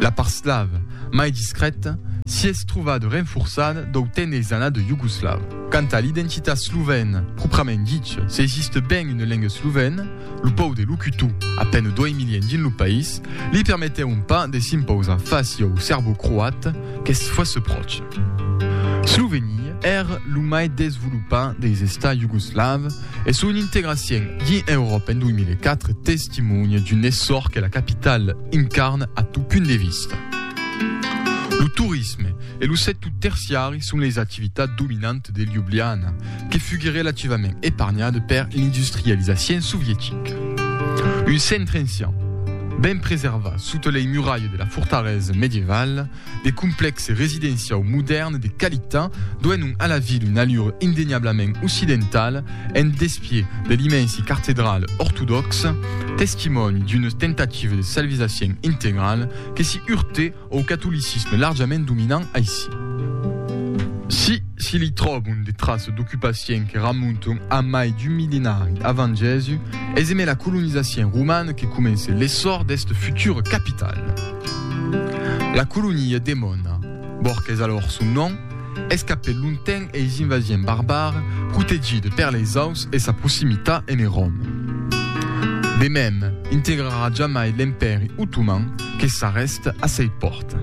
La part slave, mai discrèta, s'i es trobada renforçada dau temps dels annats iugoslaus. Quant a l'identitat slovèna pròprament dicha, s'existe ben una lenga slovèna, lo pòu de locutor, a pena 2 milièns dins lo país, li permetèron pas de s'impausar fàcia au serbocroat qu'es fòrça pròcha. Slovenia èra lo mai desvolopat dels estats iugoslaus, e son integracien dins Euròpa en 2004 testimonha d'un essor que la capital incarna a tot punt de vista. Lo torisme e lo sector terciari son leis activitats dominantes de Ljubljana, que fuguèt relativament epargnada per l'industrializacien sovietica. Un centre ancian, ben preservat sota lei muralhas de la fortalesa medievala, De complèxe residenciau modèrn de qualitat doenon a la ville una allure indeniablament occidentala en despièch de l'immensi cartedral ortodòxa, testimòni d'una tentativa de salvisacient integrala que s'i urte au catolicisme larjament dominant aicí. Si s'i li tròbon de traças d'ocupacient que ramonton a mai d'un millenari avant Jèsus, es emé la colonizacient romana que comence l'essor d'esta futura capitala. La colonia demòna Borques alòr son nom, escapèt longtemps eis invasients barbares, protegida per leis aus e sa proximitat ene Rom. De mem, integrarà jamai l'Empèri Otoman que s'arrèst a sei pòrta.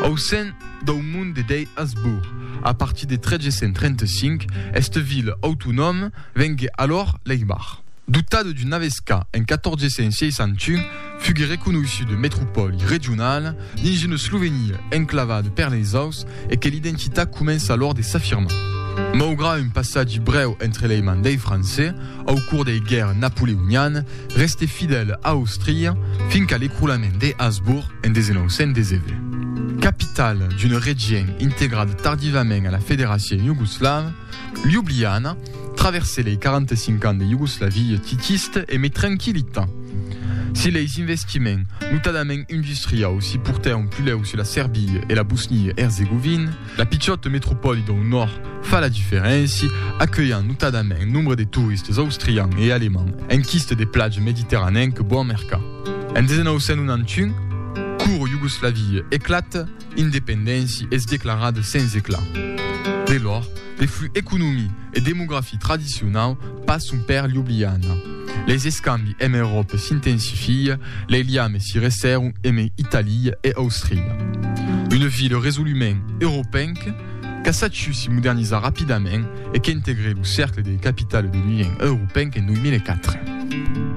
Au sen dau mond de dei Asbourg, a partir de 1335, esta vila autonòma vengué alòr Leibach. Dotada d'una avesca en 1461, Fuguèt reconeishut metropòli regionala dins una Slovenia enclavada per leis aus e que l'identitat comença alòr de s'afirmar. Maugrat un passatge brèu entre lei mans dei Francés au cors dei guèrras napoleonianas, restèt fidèl a Austria fin qu'a l'ecroulament de Habsburg en 1919. Capitala d'un regien integrat tardivament a la Federacion Iugoslava, Ljubljana Traverse lei 45 ans de Iugoslavie titist e me tranquilita. Si leis investiments, notadament industriaus, si portèron pulèu sus la Serbia e la Bosnia-Erzegovin, la pichòta metropòli dau nòrd fa la diferéncia, acuelhant notadament nombre de toristes austrians e alemands en quiste de platge mediterranenc bon mercat. En 1991, cour Iugoslavie eclata. independenti es declarada sens eclat. De lor, de flux economi e demografi tradicionau passon per Ljubljana. Les escambi emb Euròpa s'intensifia, lei liames si resserron emb Italia e Austria. Una vila resolument europenca, qu'a sachiu si modernizar rapidament e qu'integre lo cercle de capitale de l'Union europenca en 2004.